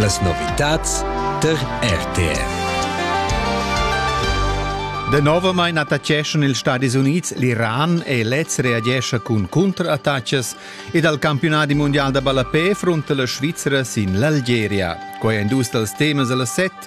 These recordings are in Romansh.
Las novitads tar RTV. Danovamain attaccheschan ils Stadis Unids l'Iran e lez reagescha cun cunterattacas ed al campiunadi mundial da ballapé frunta la Svizra sin l'Algeria. Quai èn dus dals temas da la set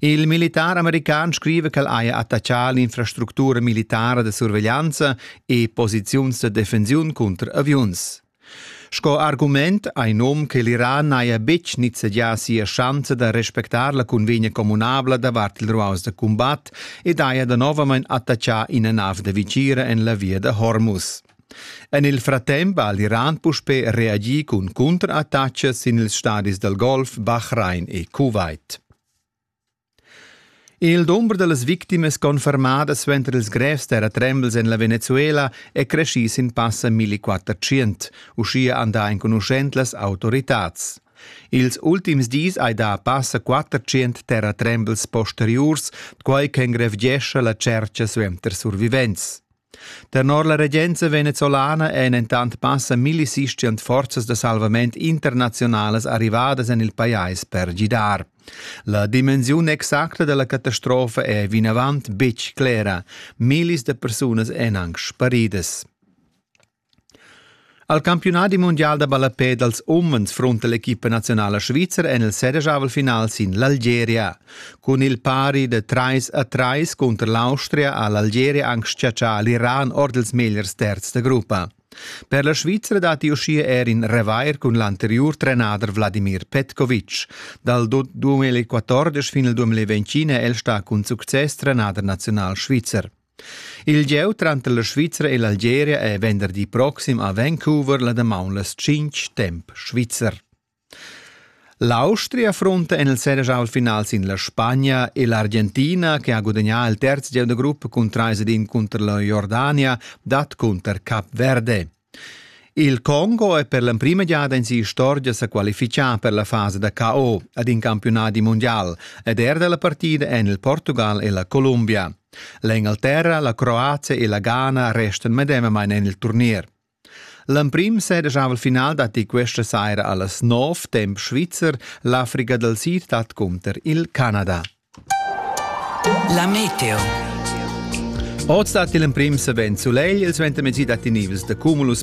Il militar american scriva ch'el haja attachà l'infrastructura militara da surveglianza e posiziuns da defensiun cunter aviuns. Sco argument ha in um che l'Iran n'haja betg nizzegià sia schanza da respectar la convegna communabla davart il ruaus da cumbat ed haja danovamain attachà ina nav da vitgira en la via da Hormuz. En il fratemp ha l'Iran puspè reagì cun cunterattacas sin ils stadis dal Golf, Bahrain e Kuwait. Il dumber da las victimas confermadas suenter ils grevs terratrembels en la Venezuela è creschì sin passa 1400, uschia han dà enconuschent las autoritads. Ils ultims dis hai dà passa 400 terratrembels posteriurs, quai ch'engrevgescha la tschercha suenter survivents. Tenor la regenza venezuelana ein entant passa millisistian forzas da salvament internaziunalas arrivadas en il pajais per gidar. La dimensiun exacta dalla catastrofa è vinavant betg clera. Millis da persunas èn anc sparidas. Al campiunadi mundial da ballapè dals umens frunta l'equipa naziunala svizra en il sedeschavel-final sin l'Algeria. Cun il pari da trais a trais cunter l'Austria ha l'Algeria anc schiaccià l'Iran ord ils megliers terzs da gruppa. Per la Svizra datti uschia er in revair cun l'anteriur trenader Vladimir Petkovic. Dal 2014 fin al 2020 è el stà cun success trenader naziunal svizzer. Il gieu tranter la Svizra e l'Algeria è venderdi proxim a Vancouver la damaun las tschintg temp svizzer. L'Austria affronta en il Senegal-final sin la Spagna e l'Argentina, che ha gudagnà il terz gieu da gruppo cun trais ed in cunter la Jordania, dat cunter Cap Verde. Il Congo è per l'emprima giada in istorgia sa qualifichà per la fasa da KO ad in campiunadi mondial ed er dalla partida en il Portugal e la Columbia. L'Engalterra, la Croazia e la Ghana restan medemamain en il turnier. L'emprim sedegiava il final datti questa saira a las 9 temp svizzer l'Africa dal Sid dat cunter il Canada. La meteo. Oz dat il emprim savens sulegl, il suentermezdi datti nivels da cumulus